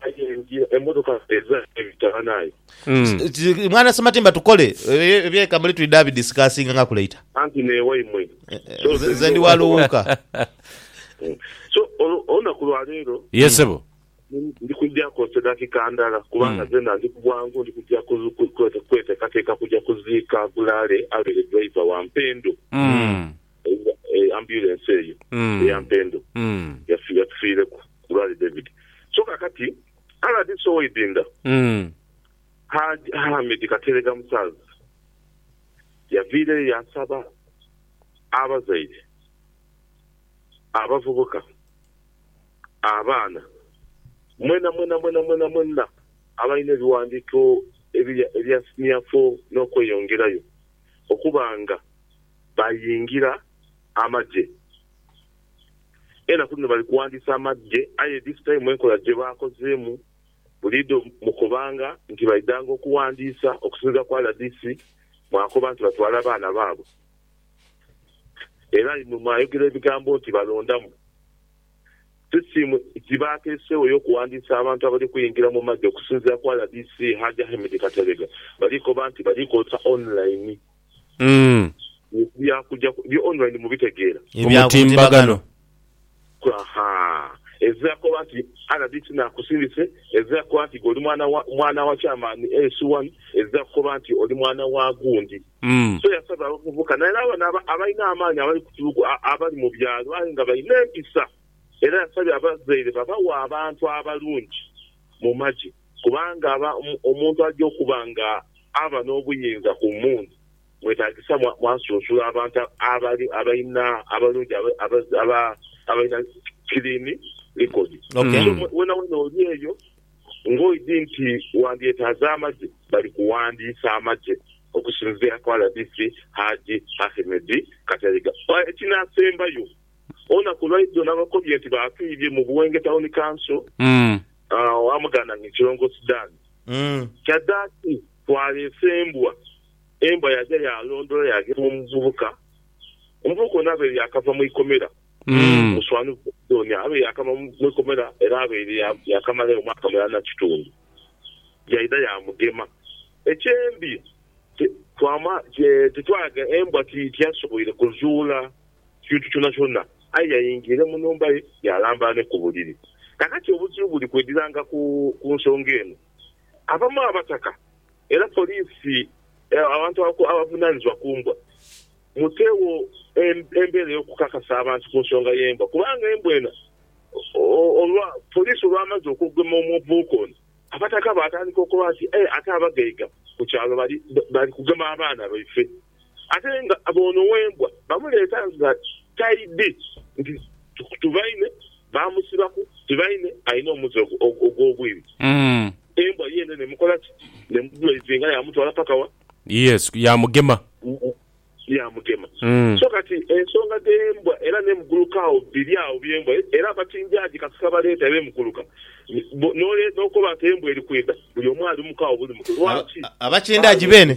Aye ndya emotoka eza ebitabana aye. Umm mwana Sematimba tukole ebye kamuli twidha bi discussinga ngaku later. Anti newaimwe so nze nze ndi waluwuuka. So olunaku lwa leero. Yes sebo. Ndi kujja kozesa dakika ndala kubanga zena ndi kubwangu ndi kujja kwetekateka kujja kuziika Gulaale abeere driver wa mpendo. Ambulance eyo eya Mpendo yatufiireku ku Lwali David. So kakati rdc owa Idinda Hajj Hamid Kateregga Musaazi yaviireyo yaasaba abazaire, abavubuka, abaana mwena mwena mwena mwena mwena abalina ebiwandiiko ebya siniya foo n'okweyongerayo okuba nga bayingira amagye. Enaku dhino bali kuwandiisa amagye aye this time enkola gye baakozeemu buliidho mukobanga nti baidhanga okuwandiisa okusinziira ku rdc mwakoba nti batwala baana baabwe era imwe mwayogera ebigambo nti balondamu sisitiimu gye baateeseewo ey'okuwandiisa abantu abali kuyingira mu magye okusinziira ku rdc Hajj Ahmed Kateregga bali koba nti bali kozesa online. Mm. Bya kuja ku, byo online mubitegeera. Ebya ku mutimbagano. Ahaa. Ezze akoba nti rdc nakusindise, ezze akoba nti gwe oli mwana wa, mwana wa chairman AS one, ezze akukoba nti oli mwana wa gundi. Mm. So yasaba abavubuka naye era bano aba, abalina amaanyi abali ku tulugu, a, abali mu byalo aye nga balina empisa era yasabye abazaire babawe abantu abalungi mu magye. Kubanga omuntu aja okuba nga aba n'obuyinza ku mmundu, mwetaagisa mwasunsula abantu abalina abalungi abalina kiliini likoni. So weenaweena oli eyo ng'oidhi nti wandyetaaze amagye, bali kuwandiisa amagye okusinziira ku rdc Haji Ahmed Kateregga. Ekinaasembayo, olunaku lwaidho nabakobye nti baatwibye mu Buwenge Town Council. Wamugana nga ekilongosi Dan. Kyadaki twaleese embwa. Embwa yaja yalondola yagema omuvubuka. Omuvubuka ono abaire yakava mu ikomera muswani gwebidhonia. Abaire yakava mu ikomera era abaire yakamalayo omwaka mulala na kitundu. Yaidha yamugema. Ekyembi twamala titwalaga embwa tiyasoboire kuzuula kintu kyonakyona, aye yaingira mu nhumba ye yaalamba ni ku buliri. Kaakati obuzibu buli kwediranga ku nsonga eno. Abamu abataka era poliisi, abantu abavunaanizibwa ku mbwa, muteegho embeera ey'okukakasa abantu ku nsonga y'embwa kubanga embwa eno olwa poliisi olwamaze okugema omuvubuka ono, abataka baatandika okoba nti, Aye ate abagaiga ku kyalo bali kugema abaana baife. ate nga b'ono w'embwa bamuleeta nga taidhi nti tubaine baamusibaku nti baine alina omuze ogw'obwibi, embwa yeene n'emukola ki? N'emudwaizinga yaamutwala paka wa? Yes, yaamugema. Yaamugema. So kati ensonga dh'embwa era n'emugulukaagho biri agho by'embwa era abatinjaji kasita baleeta era emuguluka n'okoba nti embwa eri kwidha buli omu ali mu kawo buli muto. Lwaki? Abatindaji beene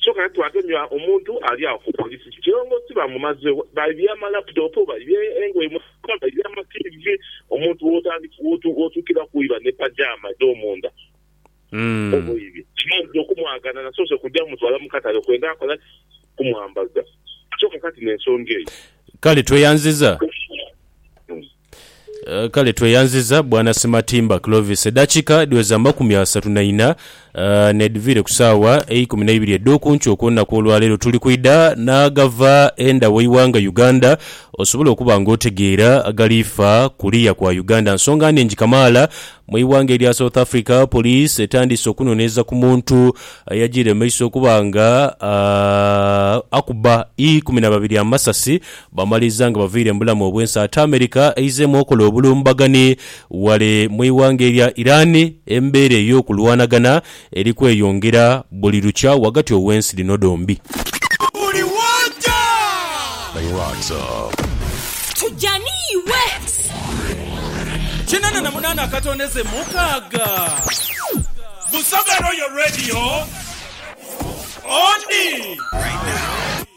Kyoka twagemya omuntu ali agho ku police. Kilongosi bamumazegho, baibye ama laptop, baibye engoye mu nyumba, baibye ama TV. Omuntu wotandika wotukira kwiba ne pajama edho munda oba oibye. Nze okumwagana nasoose kugya mutwala mu katale kwenda akola ki? Kumwambaza. Kyoka kati nensonga eyo. Kale tweyanziza. Kale tweyanziza bwana Simatimba Clovis. Edakika dhiweza amakumi asatu na ina nedhiviire ku saawa eikumi neibiri edhokunkyo okwolunaku olwaleero. Tuli kwidha naagava enda waighanga Uganda osobole okuba nga otegeera agaliifa kuliya kwa Uganda. Nsonga nnhingi kamaala mweighanga erya South Africa police etandiise okunonereza ku muntu eyajiire mumaiso okuba nga akuba ikumi nababiri amasasi Bamaliza nga bavaire mu bulamu obw'ensi ate America eizeemu okola obulumbagani ghale mu ighanga erya Iran, embeera ey'okulwanagana eri kweyongera buli lukya ghagati ow'ensi dhino dhombi. Tuja ni iwe.